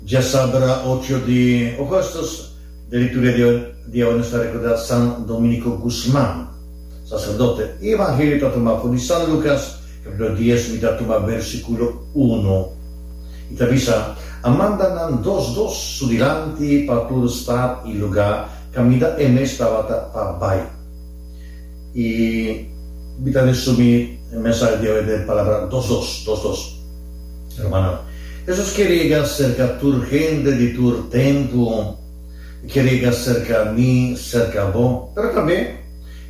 Dje sabra ocho di Augustus, de lituria di awe nos ta recorda San Dominico Guzman, sacerdote. E Evangelio ta tuma for di San Lucas, capitulo dies, mi ta tuma versiculo uno. I ta bisa, A manda nan dos dos su dilanti pa tur stad i lugar, caminda e mes tabata pa bai. I mi ta resumí e mensahe di awe den palabra dos dos, dos dos. Hermano, Hesus ker yega serka tur hende di tur tempu. E ker yega serka mi, serka bo. Pero tambe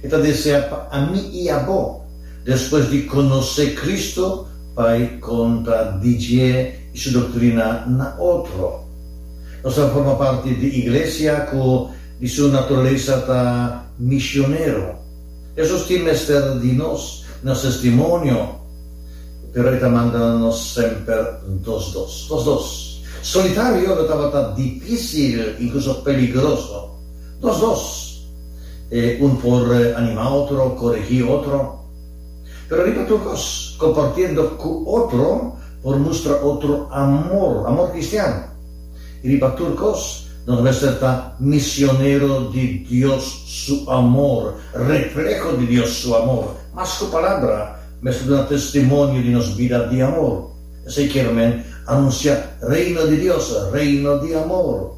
e ta desea pa ami i abo, despues di konosé Kristu, bai konta di dje i su doktrina na otro. Nos ta forma parti di iglesia ku. Di su naturalesa ta misionero. Hesus tin mester di nos na su testimonio, pero e ta manda nos semper dos dos. Dos dos. Solitario lo tabata difisil, inkluso peligroso. Dos dos. E un por animá otro, koregí otro. Pero riba tur kos, kompartiendo ku otro por mustra otro amor, amor kristian. I riba tur kos, nos mester ta misionero di Dios su amor, refleho di Dios su amor. Mas ku palabra, mester duna testimonio di nos bida di amor. Esei kier men anunsiá Reino di Dios, Reino di amor.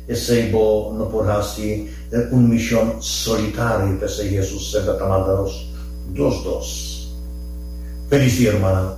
Esei bo no por hasi den un mishon solitario, p'esei Hesus semper ta manda nos dos dos. Felis dia, rumannan!